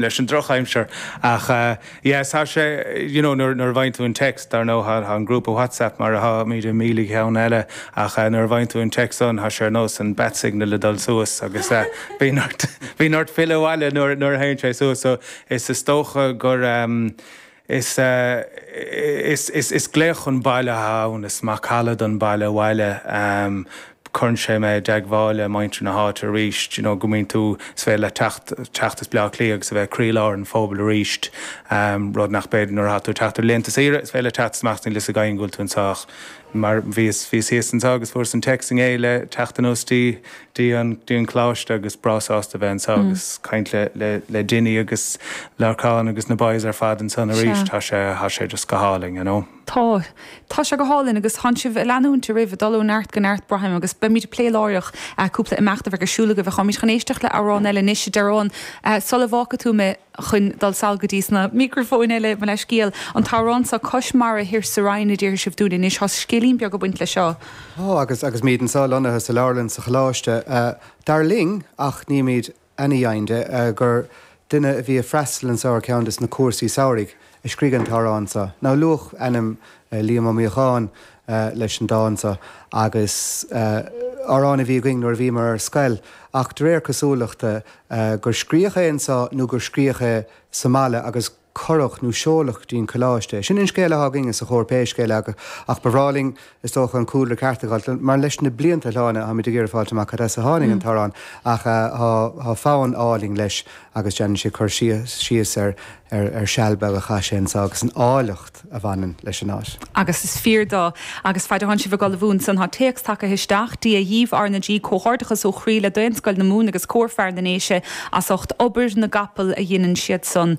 leis an drochaimsir ach yeah tá sé you know nuair a bhfaigheann tú an text ar ndóigh tá an grúpa whatsapp mar atá muid i míle cheann eile ach nuair a bhfaigheann tú an text san tá sé ar nós an bat signal ag dul suas agus bíonn ort bíonn ort filleadh abhaile nuair a théann sé suas so is is dócha gur Is is glaoch chun baile atá ann, is macalla don baile abhaile. Cuireann sé mé i dteagmháil le muintir na háite arís, you know, go mbíonn tú, is féidir leat teacht teacht as Bleá Cliath agus a bheith i gcroílár an phobail arís, rud nach féidir nuair a thá tú ag teacht ar laethanta saoire, is féidir leat teacht is imeacht is níl a fhios ag éinne go bhfuil tú anso ach mar bhíos bhíos thíos anso agus fuaireas an téacs inné le teacht anuas dtí dtí an dtí an Coláiste agus breá sásta a bheith anso agus caint le le le Dinny agus Lorcán agus na boys ar fad ansan arís. Tá sé tá sé just go hálainn, you know. Tá. Tá sé go hálainn agus thánn sibh ag leanúint oraibh, ag dul ó neart go neart, braithim, agus beimid ag plé láithreach cúpla imeacht a bheidh ar siúl agaibh ach táimid chun éisteacht le amhrán eile anois, a Darren, sula bhfágfaidh tú mé. chun dul sall go dtí sna mícreafóin eile, mo leithscéal, an t-amhrán seo, Cois Mara Thoir sa Rinn, a déarfaidh sibh dúinn anois, tá scéilín beag ag baint leis seo. Ó, agus, agus muid anseo lonnaithe sa leabharlann sa Choláiste, dar linn, ach nímid ana-dheimhin de, gur duine a bhí a' freastal anseo ar ceann de sna cúrsaí samhraidh, a scrígh an t-amhrán anseo. Now, luadh ainm Liam Ó Míodhacháin leis an dán so, agus amhrán a bhí againn nuair a bhíomar ar scoil, ach de réir cosúlachta gur scríodh é anseo nó gur scríodh é sa mbaile agus cuireadh nó seoladh dtí'n coláiste. Sin an scéal a thá againne sa chór pé scéal é, ach ba bhreá linn Is dócha an cúlra ceart a fháilt, mar leis na blianta a shláine táimid ag iarraidh fáilt amach cad as a tháinig an t-amhrán ach tá fonn álainn leis agus déanann sé cur síos ar seal beag a chaith sé anso agus an áilleacht a bhaineann leis an áit. Agus is fíor dó. Agus faid a thánn sibh ag dul ina bhun san tá téacs tagaithe isteach, Dia dhíbh, R na G, Comhghairdeachas ó chroí le Daonscoil na Mumhan agus Cór Fear na nDéise as ucht obair na gcapall a dheineann siad san